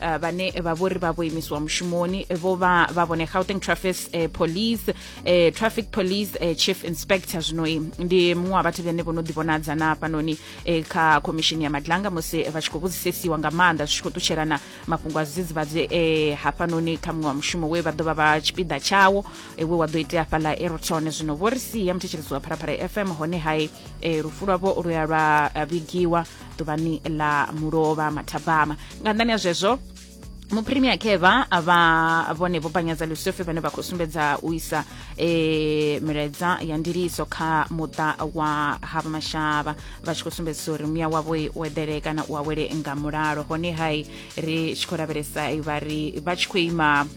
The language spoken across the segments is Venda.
uh, vhane vha vhori vha vho imisiwa mushumoni vho vha vha vhone gauteng traffic uh, police uh, traffic police uh, chief inspector zwinoi ndi muṅwe wa vhathu vhane vho no ḓivhonadza na hafhanoni uh, kha khomishini ya madlanga musi vha tshi khou vhudzisesiwa nga maanḓa zwi tshi khou ṱutshelana mafhungo a zwidzidzivhadzi uh, hafhanoni kha muṅwe wa mushumo we vha ḓo vha vha tshipiḓa tshawo uh, we wa ḓo itea fhaḽa eroton zwino vho ri sia muthetshelesi wa pharapara fm hone hai uh, lufu lwavho lu ya lwa vhigiwa ḓuvhani ḽa mulovha mathabama nga nṱhani ha zwezwo mupremier keva vha vhone vho panyadza lusofe vhane vha khou sumbedza u isa e, milaedza ya ndiliso kha muṱa wa hava mashavha vha tshi khou sumbedzisa uri muya wavho u eḓele kana u awele nga mulalo hone hai ri tshi khou lavhelesa vha ri vha tshi khou ima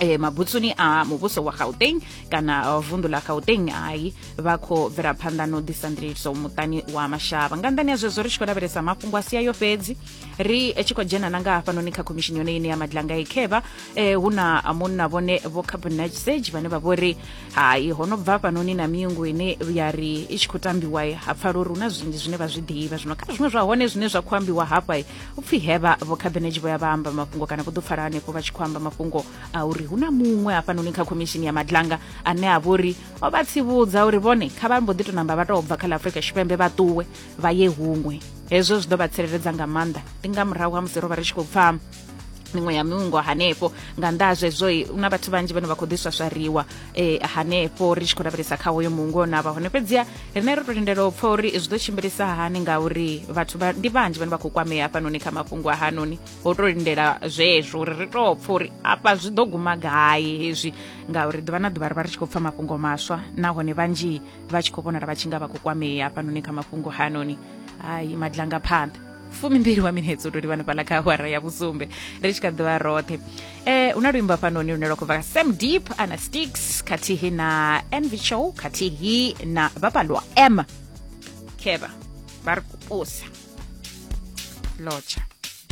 eh, mabutsuni a muvhuso wa gauteng kana vundu la gauteng hai vha khou bvela phanḓa na u ḓisa ndiliso muṱani wa mashavha nga nḓani ya zwezwo ri tshi khou lavhelesa mafhungo a sia yo fhedzi ri tshi khou dzhena na nga hafhanoni kha khomishini yone ine ya madlanga ikhevha eh, hu na munna vhone vho cabinet sage vhane vha vhori hai ho no bva fhanoni na miungu ine ya ri i tshi khou tambiwa ha pfala uri hu na zwinzhi zwine vha zwi ḓivha zwino kha zwiṅwe zwa hone zwine zwa khou ambiwa hafha u pfhi hevha vho khabinetshi vho ya vha amba mafhungo kana vho ḓo pfala hanefho vha tshi khou amba mafhungo a uri hu na muṅwe hafhanoni kha khomishini ya madlanga ane a vhori o vha tsivhudza uri vhone kha vha mbo ḓi to namba vha tou bva kha ḽa afrika tshipembe vha ṱuwe vha ye huṅwe hezwo zwi ḓo vha tsireledza nga maanḓa ndi nga murahu ha musi ro vha ri tshi khou pfha miṅwe ya miungo hanefho nga nnḓa ha zwezwo na vhathu vhanzhi vhane vha khou ḓiswaswariwa um hanefho ri tshi khou lavhelesa kha hoyo muungo na vha hone fhedziha rine ro to lindela u pfa uri zwi ḓo tshimbilisa hani ngauri vhathu ndi vhanzhi vhane vha khou kwamea hafhanoni kha mafhungo a hanoni ho to lindela zwezwo uri ri to pfa uri afha zwi ḓo guma gai hezwi ngauri ḓuvha na ḓuvha ri vha ri tshi khou pfa mafhungo maswa nahone vhanzhi vha tshi khou vhonala vha tshi nga vha khou kwamea hafhanoni kha mafhungo hanoni hai madlanga phanḓa fumimbili wa minetse u to livhana fhaḽa kha awara ya vhusumbe ri tshi kha ḓivha roṱhe eh hu na luimbo hafhanoni lune lwa khou bva sam deep ana sticks khathihi na env show khathihi na vhapalwa m khevha vha ri kupusa lotsha